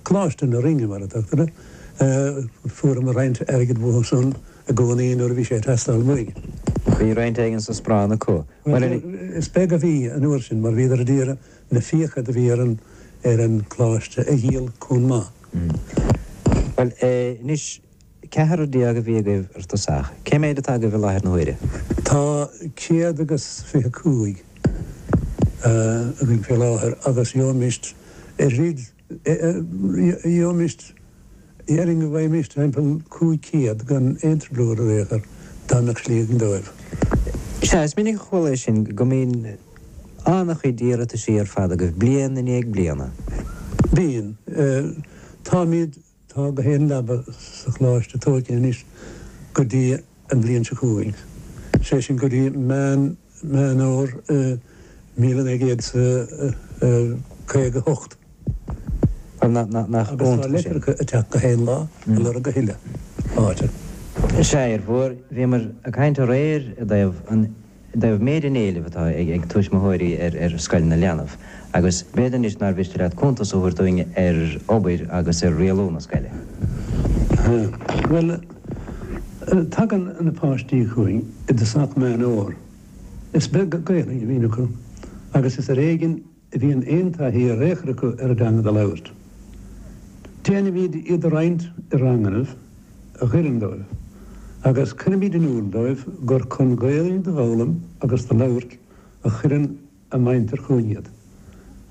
Coláiste na Rinne, mar a tugtar uirthi. Fuaireamar roinnt airgid uathu san i gcónaí nuair a bhí sé ag teastáil uainn. Bhí roinnt éigin sa Splanc acu. Bhuel, is beag a bhí an uair sin mar bhíodar a d'iarraidh na fiacha do bhí ar an gColáiste a dhíol chomh maith. Bhuel, anois, ceathrar déag a bhí agaibh ar dtosach. Cé méid atá agaibh i láthair na huaire? Tá céad agus fiche cúig againn fé láthair agus gheobhaimist oiread. Gheobhaimist, déarfainn go bhfaighimist timpeall cúig chéad gan aon trioblóid ar domhan dá mbeadh slí againn dóibh. Sea, is minic a chuala é sin go mbíonn an-chuid iarrataisí ar fad agaibh bliain i ndiaidh bliana. Bíonn. Táimíd Tá gach aon leaba sa Choláiste tóigthe anois go dtí an bhliain seo chugainn, sé sin go dtí Meán Fhómhair 1900 is a 58. Agus tá leitreacha ag teacht gach aon lá a lorg a thuilleadh áite. Sea, a Fhir Mhóir, bhíomar ag caint aréir i dtaobh an. dtaobh méid an éilimh atá ag tuismitheoirí ar Scoil na Leanbh agus b'fhéidir anois nár mhiste leat cuntas a thabhairt dúinn ar obair agus ar rialú na scoile. Bhuel, tagann na páistí chugainn i dtosach Meán Fhómhair. Is beag Gaelainn a bhíonn acu agus is ar éigin A bhíonn aon taithí in aon chor acu ar an dteanga do labhairt. Déanaimíd iad a roinnt i rangannaibh a oireann dóibh agus cuirimíd in iúl dóibh gur chun Gaeilge do fhoghlaim agus do labhairt a chuireann a muintir chugainn iad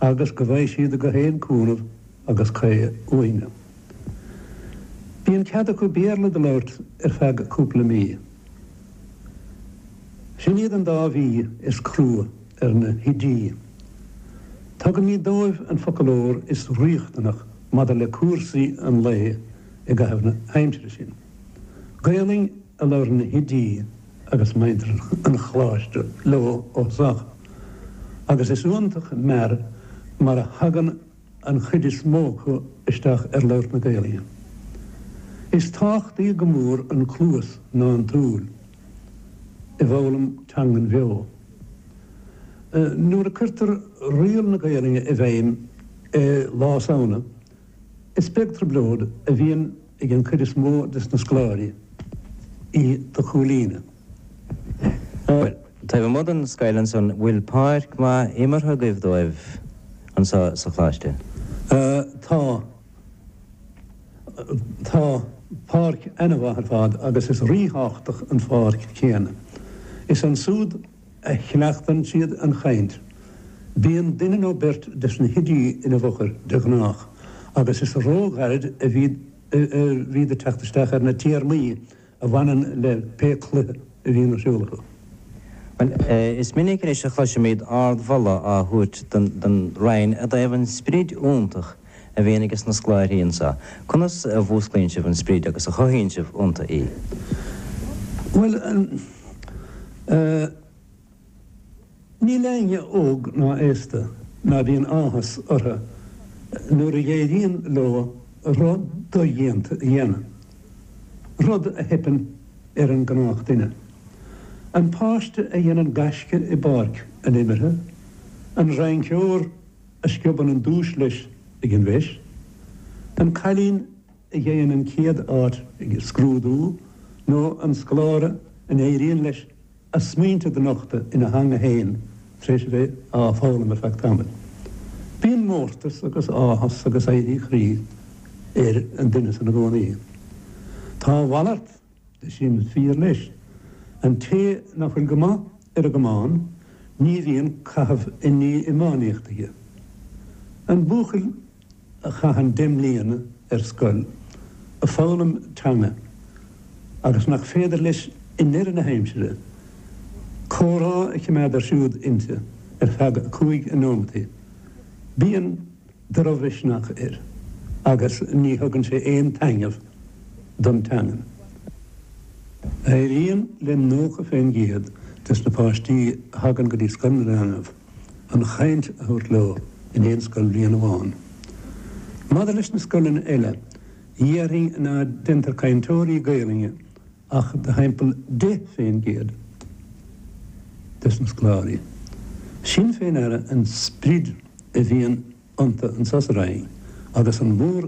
agus go bhfaighidh siad gach aon cúnamh agus caoi uainne. Bíonn cead acu Béarla do labhairt ar feadh cúpla mí. Sin iad an dá mhí is crua. ar na hoidí. Tugaimíd dóibh an foclóir is riachtanaí maidir le cúrsaí an lae i gcaitheamh na h-aimsire sin. Gaelainn a labhrann na hoidí agus muintir an Choláiste leo ó thusach agus is iontach mear mar a thagann an an chuid is mó acu isteach ar labhairt na Gaelainne. Is tábhachtaighe go mór an cluas ná an tsúil i bhfoghlaim teangan bheo. Nuair a cuirtear riail na Gaelige i bhfeidhm Lá Samhna is beag trioblóid a bhíonn. ag an chuid is mó de na scoláirí í do chomhlíonadh. Bhuel, taobh amuigh den scoil ansan, bhfuil páirc mhaith imeartha agaibh dóibh anso sa Choláiste? Tá. Tá páirc ana-mhaith ar fad agus is rí-thábhachtach an pháirc chéanna. Is ansúd a chleachtann siad an chainnt. Bíonn duine nó beirt de sna hoidí in a bhfochair de ghnách, agus is ró-ghairid a bhíd ag teacht isteach ar na téarmaí a bhaineann le pé cluiche a bhíonn ar siúl acu. Bhuel, is minic anois a chloisimíd ard-mholadh á thabhairt don Roinn i dtaobh an sprid iontach a bhíonn ag sna scláirthí annso, conas a mhúsclaíonn sibh an sprid agus a chothaíonn sibh ionnta í? Bhuel, eh, níl éinne óg ná aosta ná bíonn áthas ortha nuair a dh'éiríonn leo rud do-dhéanta a dhéanamh, rud a theipeann ar an gnách duine. An páiste a dhéanann gaisce i bpáirc an imeartha, an rainceoir, a sciobann an duais leis ag an bhFeis, an cailín a gheibheann an chéad áit ag scrúdú nó an scoláire a n-éiríonn leis a smaointe do nochtadh ina theanga fhéin tar éis a bheith á foghlaim ar feadh tamaill. Bíonn mórtas agus áthas agus éirí croí ar an duine sin i gcónaí. Tá a mhalairt Sin fíor leis. An té nach bhfuil go maith ar an gcamán ní bhíonn caitheamh i ndiaidh iománaíocht aige. An buachaill a chaitheann deich mbliana ar scoil ag foghlaim teanga agus nach féidir leis i ndeireadh na haimsire comhrá a chimeád ar siúl inti ar feadh a cúig nóimeataí bíonn dro-mhisneach air agus ní thugann sé aon taithneamh don teangain. Éiríonn le 90 fén gcéad des na páistí a thagann go dtí Scoil na Leanbh an chaint a thabhairt leo in aon scoil-bhliain amháin. Maidir leis na scoileanna eile, déarfainn ná deintear cainteoirí Gaelainne ach de thimpeall deich fén gcéad de na scoláirí. Sin fé ndear an sprid a bhíonn iontu anso sa Rinn agus an mhór